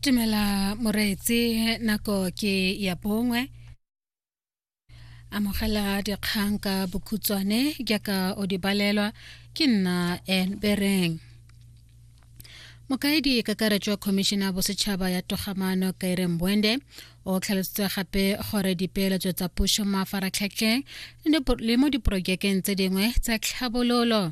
tumela moreetsi nako ke ya bongwe amogela dikgang ka bokhutshwane jaaka o di balelwa ke nna en bereng mokaedi kakaretso wa khomišene ya bosetšhaba ya togamano kaire mbwende o tlhalositse gape gore dipeeletso tsa puso mo mafaratlhatlheng le mo diporojekeng tse dingwe tsa tlhabololo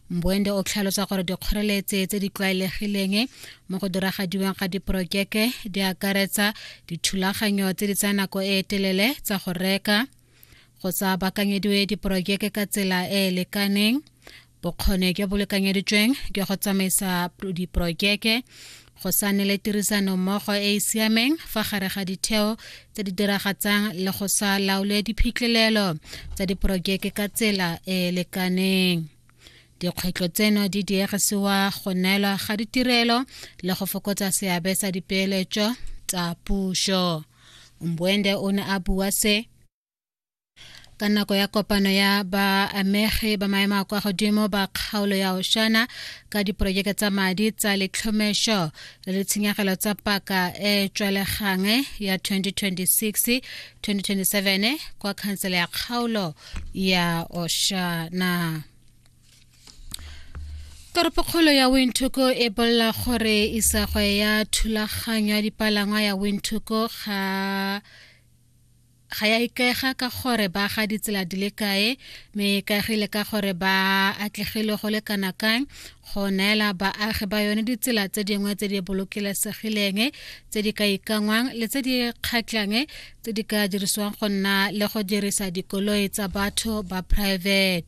mboende o tlhalosa gore dikgoreletse tse di tlwaelegileng mo go diragadiweng ga diporojeke di akaretsa dithulaganyo tse di tsaya nako e e telele tsa go reka go sa bakanyediwe diporojeke ka tsela e e lekaneng bokgone jo bo lekanyeditsweng jwa go tsamaisa diporojeke go sa ne le tirisano mmogo e e siameng fa gare ga ditheo tse di diragatsang le go sa laole diphitlhelelo tsa diporojeke ka tsela e e lekaneng dikgwetlho tseno di diegisiwa go neelwa ga ditirelo le go fokotsa seabe sa dipeeletso tsa puso mbuende o ne a bua se ka nako ya kopano ya baamegi ba maemo a kwa godimo ba kgaolo ya oshana ka diporojeke tsa madi tsa letlhomešo le ditshenyegelo tsa paka e tswelegang ya 2026 2027 kwa khansele ya kgaolo ya oshana toropokgolo ya windhoek e bolela gore isagwe ya thulaganyo ya dipalangwa ya windhoek ga ga ya ikaega ka gore ba ga ditsela di le kae me e ikaegile ka gore ba atlegile go le kana kang go neela baagi ba yone ditsela tse dingwe tse di bolokilesegileng tse di ka ikangwang le tse di kgatlang tse di ka dirisiwang go nna le go dirisa dikoloi tsa batho ba private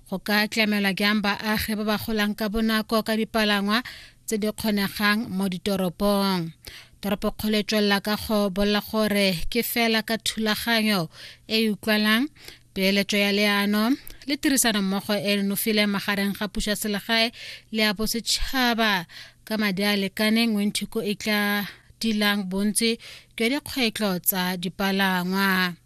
go ka tlamela jang baagi ba ba golang ka bonako ka dipalangwa tse di kgonegang mo ditoropong toropokgolo e tswelela ka go bolela gore ke fela ka thulaganyo e e utlwalang peeletso ya leano le tirisanommogo e e nofileng magareng ga puso ya selegae le ya bosetšhaba ka madi a lekaneng wenthuko e tla dilang bontsi jwa dikgwetlho tsa dipalangwa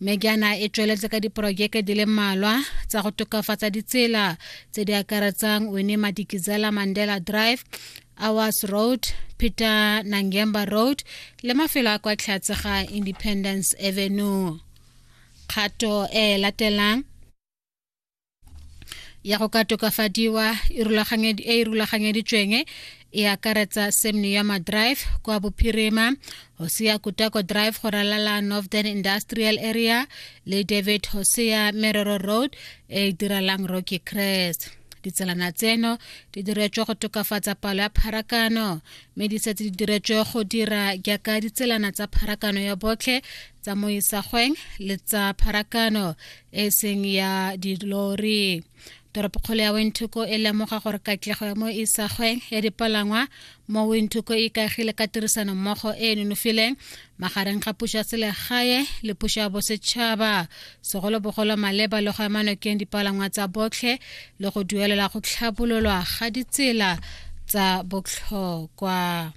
mme jaana e tsweletse ka diporojeke di le mmalwa tsa go tokafatsa ditsela tse di akaretsang wene madikizela mandela drive Awas Road, Peter Nangemba Road le mafelo a kwa tlhatse ga Independence Avenue. Kgato e latelang ya go ka tokafadiwa e, e e rulaganyeditsweng e akaretsa semnioma drive kwa bophirima hosea kutako drive go ralala northern industrial area le david hosea merero road e e diralang rocky crest ditselana tseno di diretswe go tokafatsa palo ya pharakano mme di setse di diretswe go dira jaaka ditselana tsa pharakano ya botlhe tsa moisagweng le tsa pharakano e seng ya dilori toropokgolo ya windhoek e lemoga gore katlego ya mo isagweng ya dipalangwa mo windhoek e ikagile ka tirisano mmogo e e nonofileng magareng ga puso ya selegae le puso ya bosetšhaba segolobogolo maleba le go emanokeng dipalangwa tsa botlhe le go duelela go tlhabololwa ga ditsela tsa botlhokwa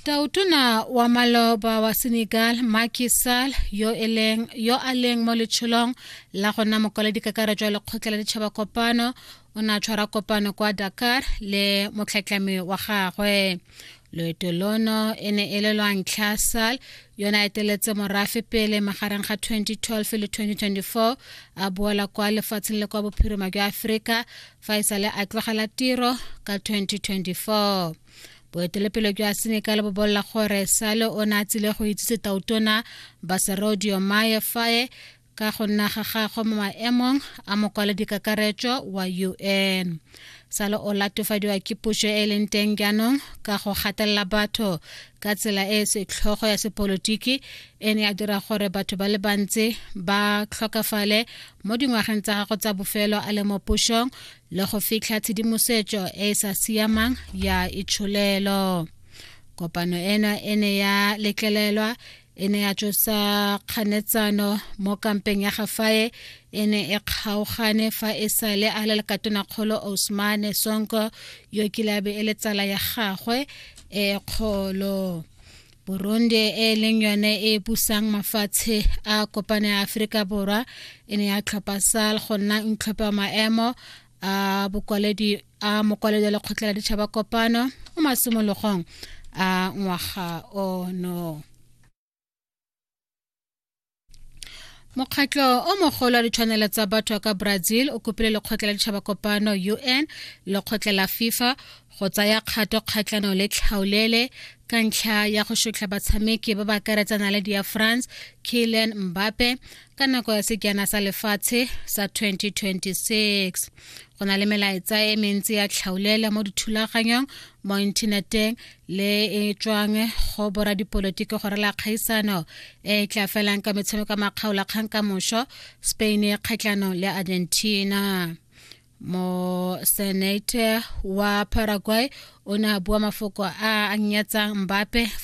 Tautona wa maloba wa Senegal Macky Sall yo eleng yo a leng mo letsholong la go nna mokwaledi kakaretso ya lekgotla la ditšhaba kopano o ne a tshwara kopano kwa Dakar le motlhatlhami wa gagwe loeto lono e ne e le lwa ntlha sal yona eteletse morafe pele magareng ga 2012 le 2024 a boela kwa lefatsheng le kwa bophirima jwa aforika fa e sale a tlogela tiro ka 2024 boetelepele jwa senegal bo bolela gore sale o ne a tsile go itsise tautona baserodio maye faye ka go nna ga gagwe mo maemong a mokwaledi kakaretso wa un sale o latofadiwa ke puso e leng teng jaanong ka go gatelela batho ka tsela e e setlhogo ya sepolotiki e ne ya dira gore batho ba le bantsi ba tlhokafale mo dingwageng tsa gago tsa bofelo a le mo pušong le go fitlha tshedimosetso e e sa siamang ya itsholelo kopano ena e ne ya letlelelwa e ne ya tsosa kganetsano mo kampeng ya gafae e ne e kgaogane fa e sa le a le lekatonakgolo osmane sonko yo kilabe e le tsala ya gagwe e kgolo burundi e leng yone e pusang mafatshe a kopane ya aforika borwa e ne ya tlhopha sal go nna ntlhophe wa maemo a bokwaledi a mokwaledi wa lekgotla la ditšhaba kopano mo masimologong a ngwaga ono mokgatlho o mogolo wa ditshwanelo tsa batho wa ka brazil o kopile lekgotla la ditšhaba kopano un lekgotla la fifa go tsaya kgato kgatlhano le tlhaolele ka ntlha ya go shotlha batshameki ba ba akaretsana le dia france kylian mbappe ka nako ya sekjana sa lefatshe sa 2026 go na le melaetsa e mentsi ya tlhaolele mo dithulaganyong mo inthaneteng le e tswang go bora dipolotiki gore la kgaisano e tla felang ka metshameko makgaola kgang ka moso spain e kgatlhanong le argentina mo senate wa paraguay o ne a bua mafoko a a nyatsang mbape fa